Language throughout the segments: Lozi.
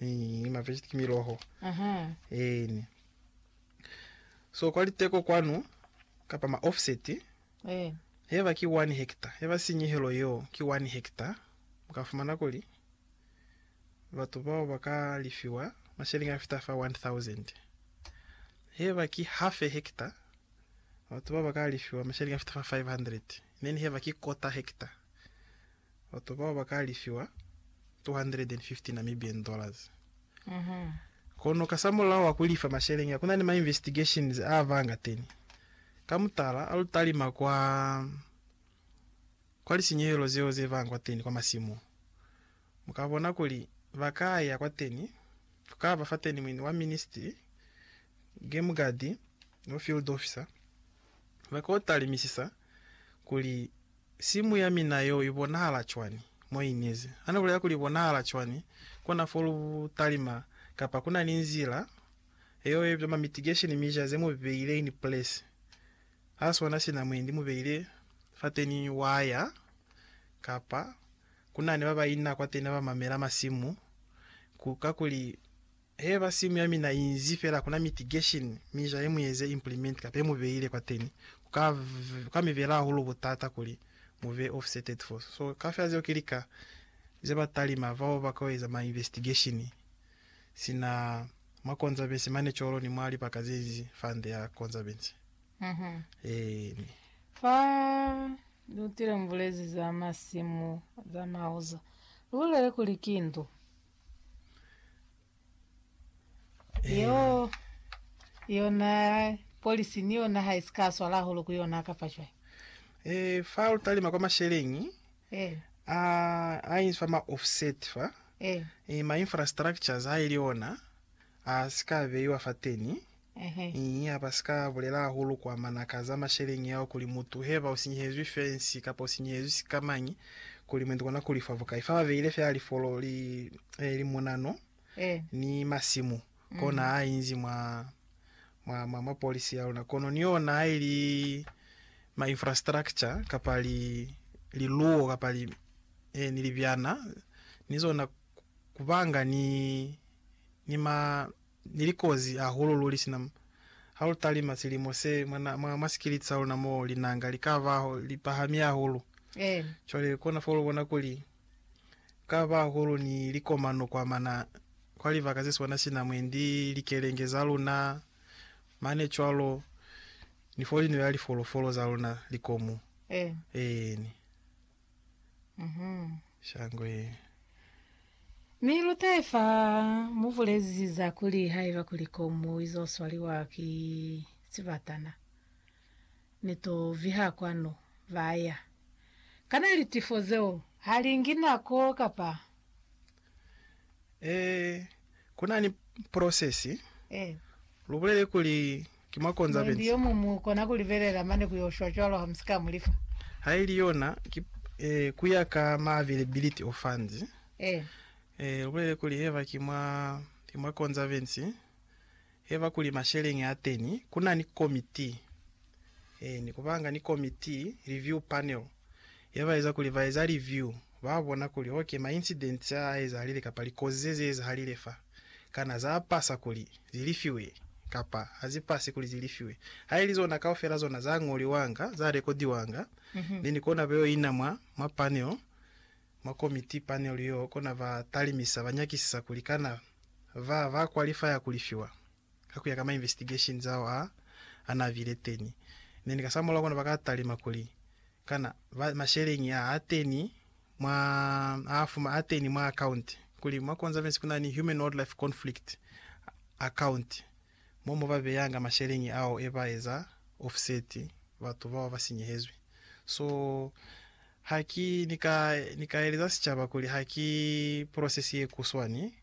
Ni ma vegetables ki miloho. Aha. Eni. So kwa liteko kwanu kapa ma offset Eh. heba ki 1 hectare, heba sinyehelo yeo ki 1 hectare, mu ka fumana kuli batu bao ba ka lifiwa masheleñi a fita fa 1000. Heba ki half a hectare, batu bao ba ka lifiwa masheleñi a fita fa 500. Then heba ki quarter hectare. Batu bao ba ka alifiwa N250 Namibian dollars. Kono kasamulaho wa ku lifa masheleñi a, ku na ni ma investigations a ba nga teni. Ka mutala, a lu talima kwa, kwa lisinyehelo zeo ze ba kwa teni kwa masimu, mu ka bona kuli ba ka ya kwa teni, ku ka ba fa teni muini wa ministry, game guard, no field officer, ba ka yo talimisisa kuli Simu ya mina yeo i bonahala cwani? Moinizi a ni bulela kuli i bonahala cwani kona fo lu talima, kapa ku na ni nzila yeo ye bitwa ma mitigation mica ze mu beile ini place ha sona sina mwendi mu beile fateni waya, kapa ku na ni ba ba ina kwateni ha ba mamela masimu ku, kakuli. Heba simu ya mina inzi fela kuna mitigation mi jahe mueze implement kapa he mu beile kwateni kuka kuka mi bela hahulu butata kuli mu be offsetted fo so kafela zeo ki lika ze ba talima bao ba kao eza ma investigation sina mwa conservancy mane colo ni mwa libaka zenzi fund ya conservancy eeni. Fa lutile mubulezi za masimu za mauzo, lubulele kuli ki ndu. Yo, yona polisi ni yona ha isi ka swala hahulu ku yona kapa cwai? E, fa lu talima kwa masheleñi E, a, a inzi fa ma offset fa, e, e, ma infrastructures haili ona a si ka beiwa fateni. Ii, Habasika bulela hahulu kwa manaka za masheleñi ao kuli mutu heba usinyehezwi fensi kapa usinyehezwi sikamañi kuli mwendi kona kulifa bukai. Fa babeile fela lifolo li, e, limunano ni masimu, kona ha inzi mwa, mwa, mwa, mwa polisi ya luna. Kono ni ona ha ili ma infrastructure kapa li, liluwo kapa li, e, ni libyana ni zona kubanga ni, ni ma, Ni likozi hahulu luli sina ha lu talima silimo se mwa, mwa, mwa sikiliti sa luna mo linanga li ka ba li pahami hahulu. Cwale kona fo lu bona kuli ku ka ba hahulu ni likomano kwa mana, kwa libaka ze swana sina mwendi likelenge za luna mane cwalo, ni fo li nwela lifolofolo za luna likomu. Eeni. Mhm. Shangwe. Mi lutaye fa mubulezi za kuli haiba kuli komu izo swaliwa ki sibatana ni to viha kwanu, baya. Kana litifo zeo halingi nako kapa? Ee, ku na ni prosesi. Ee. Lu bulele kuli ki mwa konza Mwendi benzi. yo muñwi mu kona ku libelela mane ku yo shwa cwalo ha mu si ka mu lifa. Ha ili yona, ki, ee, ku ya ka ma availability o funds. Ee. Ee, lu bulele kuli heba ki mwa, ki mwa konza benzi. Heba kuli masheleñi a teni ku na ni komiti e ni ku banga ni komiti, review panel, ye ba eza kuli ba eza review, ba bona kuli ok ma incidents a a ezahalile kapa likozi ze ze ezahalile fa, kana za pasa kuli zi lifiwe kapa ha zi pasi kuli zi lifiwe. Ha ili zona kaufela zona za ñoliwanga, za rekodiwanga, then kona be yo ina mwa, mwa panel Mwa komiti panel yo kona ba talimisa ba nyakisisa kuli kana ba ba qualifya ku lifiwa ka kuya ka ma investigation zao a a na bile teni, neni ka sa mulao kona ba ka talima kuli kana ba masheleñi a a teni mwa a fuma a teni mwa account kuli mwa conservancy kuna ni human wildlife conflict account. mo mu ba beyanga masheleñi ao e ba eza offset batu bao ba sinyehezwi. So, ha ki ni ka, ni ka eleza sicaba kuli ha ki process ye kuswani,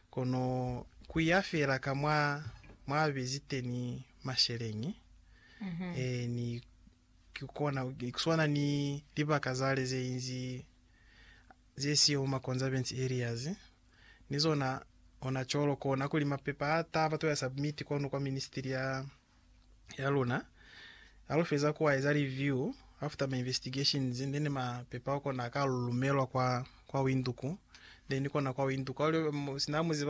kono ku ya fela ka mwa, mwa bezi teni masheleñi, e, ni ki kona, ni ku swana ni libaka zale ze inzi ze siyo mu ma conservance areas. ni zona ona colo kona kuli mapepa a taba to ya submit kwanu kwa ministry ya ya luna ha lu feza ku a eza review after ma investigations then mapepa ao kona a ka lumelwa kwa kwa Windhoek then kona kwa Windhoek ha lu sina ha mu ziba